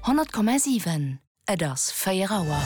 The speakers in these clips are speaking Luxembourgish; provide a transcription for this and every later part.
100,7 Et ass 4 Auer.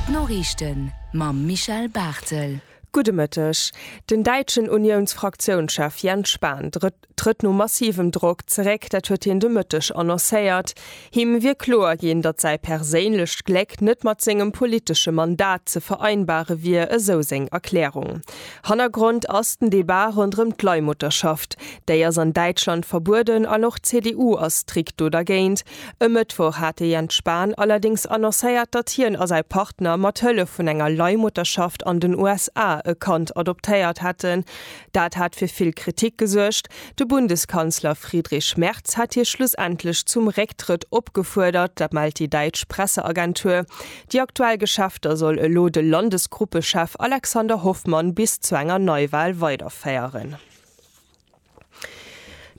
D'Noriichten mam Michel Barthel. Gudde Mëtteg. Den däitschen Uniounsfraktiounschef Jens Spahn trëtt no massivem Drock zeréck. Dat huet hien de Mëtteg annoncéiert. Him wier kloer ginn, datt säi perséinlecht Gléck net mat sengem politesche Mandat ze vereinbare wier, esou seng Erklärung. Hannergrond ass den Debat ronderëm d'Leihmutterschaft. Déi ass an Däitschland verbueden an och d'CDU ass strikt do dergéint. E Mëttwoch hat de Jens Spahn allerdéngs annoncéiert, datt hien a säi Partner mat Hëllef vun enger Leihmutterschaft an den USA e Kand adoptéiert hätten, Dat hat fir vill Kritik gesuergt. De Bundeskanzler Friedrich Merz hat hie schlussendlech zum Récktrëtt opgefuerdert, dat mellt déi däitsch Presseagentur. Déi aktuell Geschäfter soll elo de Landesgruppechef Alexander Hoffmann bis zu enger Neiwal weiderféieren.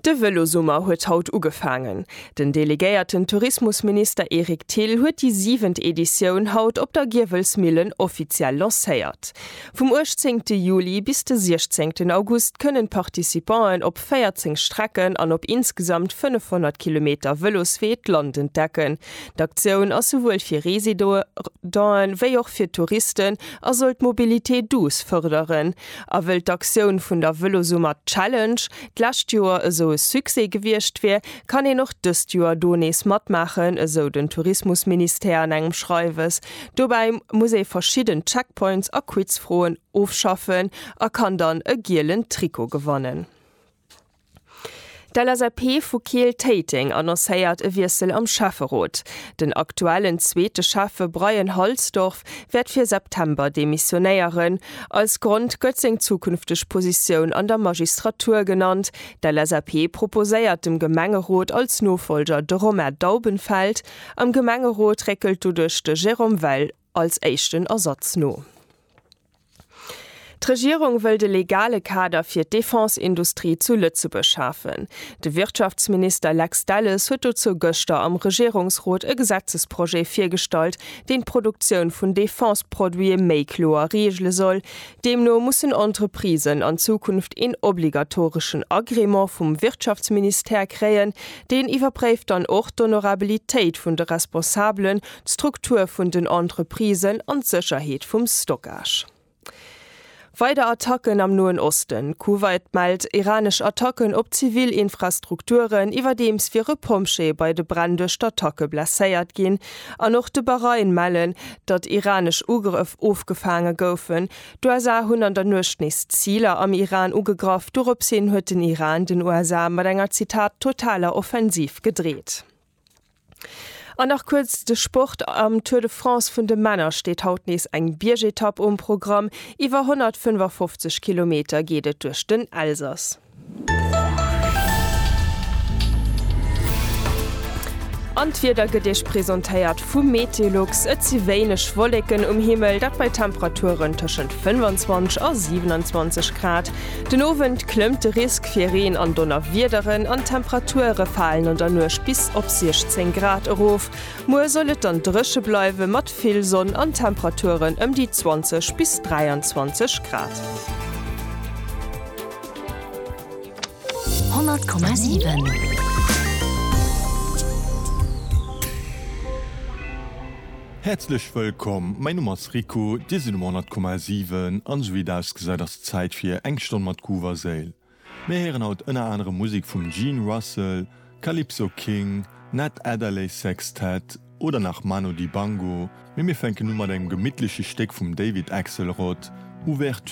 De Vëlosummer huet haut ugefaangen. Den delegéierten Tourismusminister Eric Thill huet déi siwent Editioun haut op der Giewelsmillen offiziell lancéiert. Vum uechtzéngte Juli bis de siechzéngten August kënnen d'Participanten op 14 Strecken an op insgesamt 500 Kilometer Vëloswee d'Land entdecken. D'Aktioun ass souwuel fir Residenten wéi och fir Touristen a soll d'Mobilité douce fërderen. A wëll d'Aktioun vun der Vëlosummer Challenge d'lescht Joer esou e Succès gewiescht wier, kann een och dëst Joer do nees matmaachen, esou den Tourismusministère an engem Schreiwes. Dobäi muss ee verschidden Checkpoints a Quizfroen ofschaffen a kann dann e gielen Trikot gewannen. D'LSAP vu Keel-Téiteng annoncéiert e Wiessel am Schäfferot. Den aktuellen zweete Schäffe Brian Halsdorf wäert fir September demissionéieren. Als Grond gëtt seng zukünfteg Positioun an der Magistratur genannt. D'LSAP proposéiert dem Gemengerot als Nofolger de Romain Daubenfeld. Am Gemengerot réckelt doduerch de Jérôme Weil als éischten Ersatz no. D'Regierung wëll de legale Kader fir d'Defense-Industrie zu Lëtzebuerg schafen. De Wirtschaftsminister Lex Delles huet dozou gëschter am Regierungsrot e Gesetzesprojet virgestallt, deen d'Produktioun vun Defense-Produite méi kloer reegele soll. Deemno mussen Entreprisen an Zukunft een obligatoreschen Agrément vum Wirtschaftsministère kréien. Deen iwwerpréift dann och d'Honorabilitéit vun de Responsabele d'Struktur vun den Entreprisen an d'Sécherheet vum Stockage. Weider Attacken am Noen Osten, Kuwait mellt iranesch Attacken op zivil Infrastrukturen, iwwerdeems wier e Pompjee bei de Bränn duerch d'Attacke blesséiert ginn, an och de Bahrain mellen, datt iranesch Ugrëff ofgefaange goufen. D'USA hunn an der Nuecht nees Ziler am Iran ugegraff, doropshin huet den Iran den USA mat enger, Zitat, totaler Offensiv gedreet. An nach kuerz de Sport, Am Tour de France vun de Männer steet haut nees eng Biergetapp um Programm. Iwwer 155 Kilometer geet et duerch den Elsass. An d'Wieder gëtt Iech presentéiert vum Meteolux, Et si wéineg Wolleken um Himmel, dat bei Temperaturen tëschent 25 a 27 Grad. Den Owend klëmmt de Risk fir Reen an Donnerwiederen an d'Temperature falen an der Nuecht bis op 16 Grad erof. Muer soll et dann dréche bleiwe mat vill Sonn an Temperaturen ëm déi 20 bis 23 Grad. 100,7. Häerzlech wëllkomm, mäin Numm ass Rico, dir sidd um 100,7 an esou wéi et ausgesäit ass et Zäit fir eng Stonn mat Groove a Séil. Mir héieren haut ënner anerem Musek vum Gene Russell, Calypso King, Ned Adderley Sextet oder nach Manu Dibango, mee mir fänken u mat engem gemittleche Stéck vum David Axelrod, Ouverture.